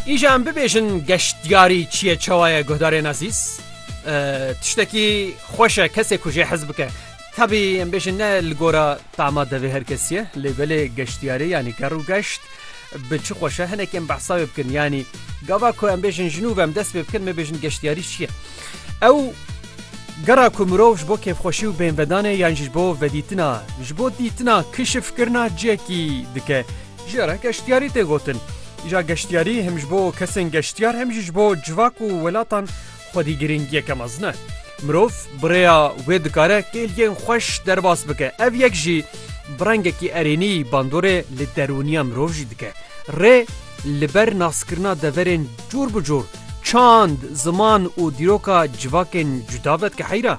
Îja em bibêjin geştyarî çi ye çawa ye guhdarên ezîz? Tiştekî xweş e kesê ku jê hez bike. Tevî em bêjin ne li gora tama devê her kesî ye lê belê geştyarê yanî ger û geşt bi çi xweş e hinek em behsa wê bikin yanî gava ku em bêjin ji nû ve em dest pê bikin me bêjin geştyarî çi ye? Ew gera ku mirov ji bo kêfxweşî û bênvedanê yan jî ji bo vedîtina ji bo dîtina kişifkirina cihekî dike. Ji re geştyarî tê gotin. Îja geştyarî hem ji bo kesên geştyar hem jî ji bo civak û welatan xwedî girîngiyeke mezin e. Mirov bi rêya wê dikare kêliyên xweş derbas bike. Ev yek jî bi rengekî erênî bandorê li derûniya mirov jî dike. Rê li ber naskirina deverên cor bi cor, çand, ziman û dîroka civakên cuda vedike heyra.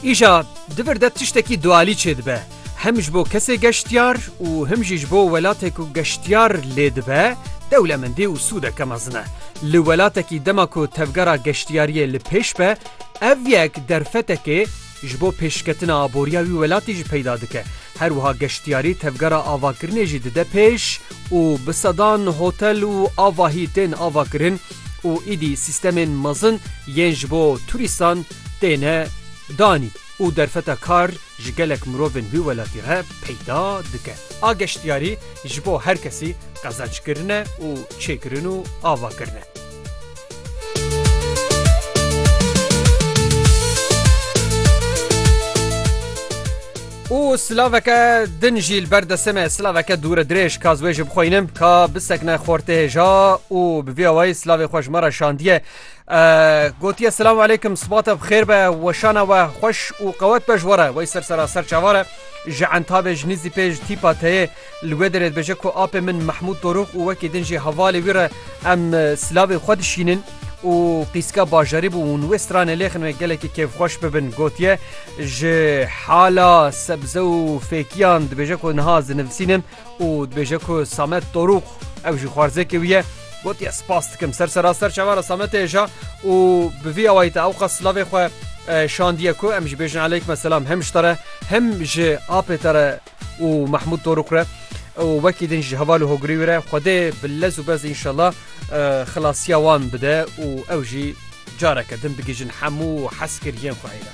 Îşa di vir de tiştekî dualî çêdibe. Hem ji bo kesê geştyar û him jî ji bo welatê ku geştyar lê dibe dewlemendî û sûdeke mezin e. Li welatekî dema ku tevgera geştyariyê li pêş be ev yek derfetekê ji bo pêşketina aboriya wî welatî jî peyda dike. Her wiha geştyarî tevgera avakirinê jî dide pêş û bi sedan hotel û avahî tên avakirin û îdî sîstemên mezin yên ji bo turîstan têne danîn û derfeta kar ji gelek mirovên wî welatî re peyda dike. A geştyarî ji bo her kesî qezençkirin e û çêkirin û avakirin e. û silaveke din jî li ber destê me silaveke dûre dirêj ka wê ji bixwînim ka bisekne xortê hêja û bi vê awayî silavê xweş me re şandiye gotiye silav aleykum sibate xêr be weşana we xweş û qewet be ji were wey ser sera ser çavare ji entabê ji nîzî pêj tîpa teyê Li wê derê dibêje ku apê min Mehmûd Dorûx û wekî din jî hevalê wî re em silavên xwe dişînin û qîska bajarî bû hûn wê stranê lêxinê gelekî kêfxweş bibin. Gotiye, Ji hala sebze û fêkiyan dibêje ku niha ez dinivîsînim û dibêje ku Samet Dorûx ew jî xwarzêkê wî ye. Gotiye, Spas dikim ser sera ser çava re Sametê hêja û bi vî awayî te ewqas silavê xwe şandiye ku em jî bêjin Eleykme selam him ji te re him ji apê te re. û Mahmûd Torok re û wekî din ji heval û hogirî wî re Xwedê bi lez û bez înşela xilasiya wan bide û ew jî careke din bigihîjin hemû heskiriyên xwe ê re.